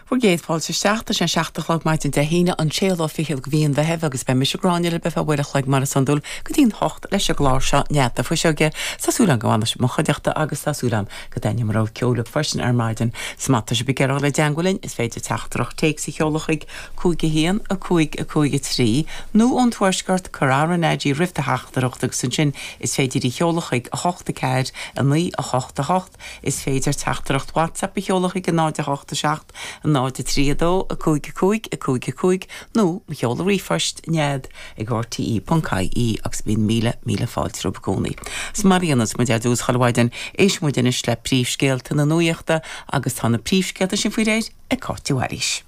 Bhur gcéad fáilte isteach. Tá sé an seacht a chlog maidin Dé hAoine, an séú lá fichead de mhí an Mheithimh, agus beidh mise, Gráinne, libh ar feadh uair a chloig mar is iondúil, go dtí an hocht, leis an gclár seo, Nead na Fuiseoige, tá súil agam go bhfanfaidh sibh i mo chuideachta agus tá súil agam go dtaitneoidh mo rogha ceoil libh freisin ar maidin. Is má tá sibh ag iarraidh a dhul i dteangmháil linn, is féidir teachtaireacht téacs a sheoladh chuig, 5 1, 5 5 3, nó ón Tuaisceart, cuir RnaG roimh do theachtaireacht agus ansin is féidir í a sheoladh chuig, 8 4, 9 8 8. Is féidir teachtaireacht WhatsApp a sheoladh chuig 0 8 7 0 3 2 5 5 5 5 nó mo sheoladh ríomhphoist, Nead ag rte.ie agus bíonn míle míle fáilte romhaibh i gcónaí. Is mar a dhéanas muid ar dtús chuile mhaidin, éistfidh muid anois le príomhscéalta na nuaíochta agus tá na príomhscéalta sin faoi réir ag Cáit de Bhailís.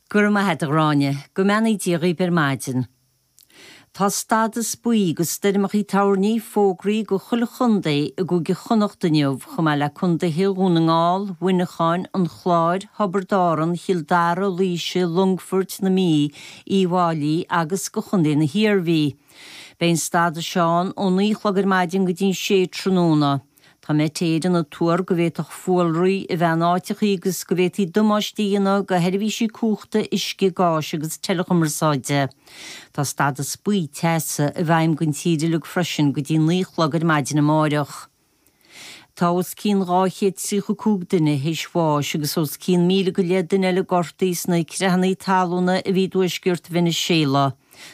Go raibh maith agat, a Ghráinne. Go mbeannaí Dia dhaoib ar maidin. Tá stádas buí do stoirmeacha toirní fógraithe do chuile chontae i gCúige Chonnacht inniu, chomh maith le contaetha Dhún na nGall, Mhuineacháin, an Chláir, Thiobraid Árann, Chill Dara, Laoise, Longfoirt, na Mí, Uíbh Fháilí agus do Chontae na hIarmhí. Beidh an stádas seo ann ó naoi a chlog ar maidin go dtí an sé tráthnóna. Tá Met Éireann ag tuar go bhféadfadh fuarlaigh a bheith in áiteachaí agus go bhféadfaí damáiste a dhéanamh do sheirbhísí cumhachta, uisce, gáis agus teileachumarsáide. Tá stádas buí, teasa, i bhfeidhm don tír uilig freisin go dtí naoi a chlog ar maidin amáireach. Tá os cionn dhá chéad tríocha cúig duine théis bháis agus os cionn míle go leith duine eile gortaithe sna creathannaí talúna a bhí i dtuaisceart Veiniséala.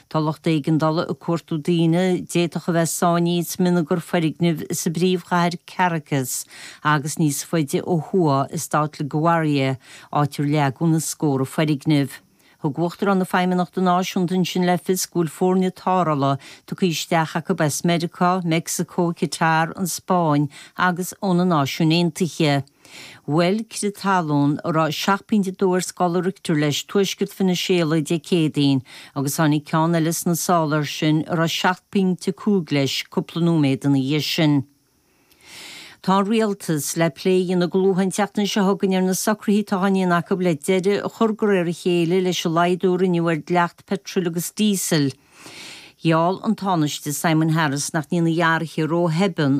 Tá lucht éigeandála ag cuartú daoine a d'fhéadfadh a bheith sáinnithe i smionagar foirgneamh sa bpríomhchathair Caracas agus níos faide ó thuaidh i stát La Guaira, áit ar leagadh na scórtha foirgneamh. Thug Uachtarán na Feidhmeannachta Náisiúnta ansin le fios go bhfuil foirne tarrthála tugtha isteach acu as Meiriceá, Meicsiceo, Catar, an Spáinn agus ó na Náisiúin Aontaithe. Bhuail crith talún, a raibh seacht bpointe dó ar scála Richter leis, tuaisceart Veiniséala Dé Céadaoin, agus tháinig ceann eile sna sála air sin, a raibh seacht bpointe cúig leis, cúpla nóiméad ina dhiaidh sin. Tá an rialtas le plé a dhéanamh go luath an tseachtain seo chugainn ar na socruithe atá á ndéanamh acu le deireadh a chur de réir a chéile leis an laghdú a rinneadh ar dhleacht peitril agus díosail. Gheall an Tánaiste Simon Harris nach ndéanfaí athruithe róthobann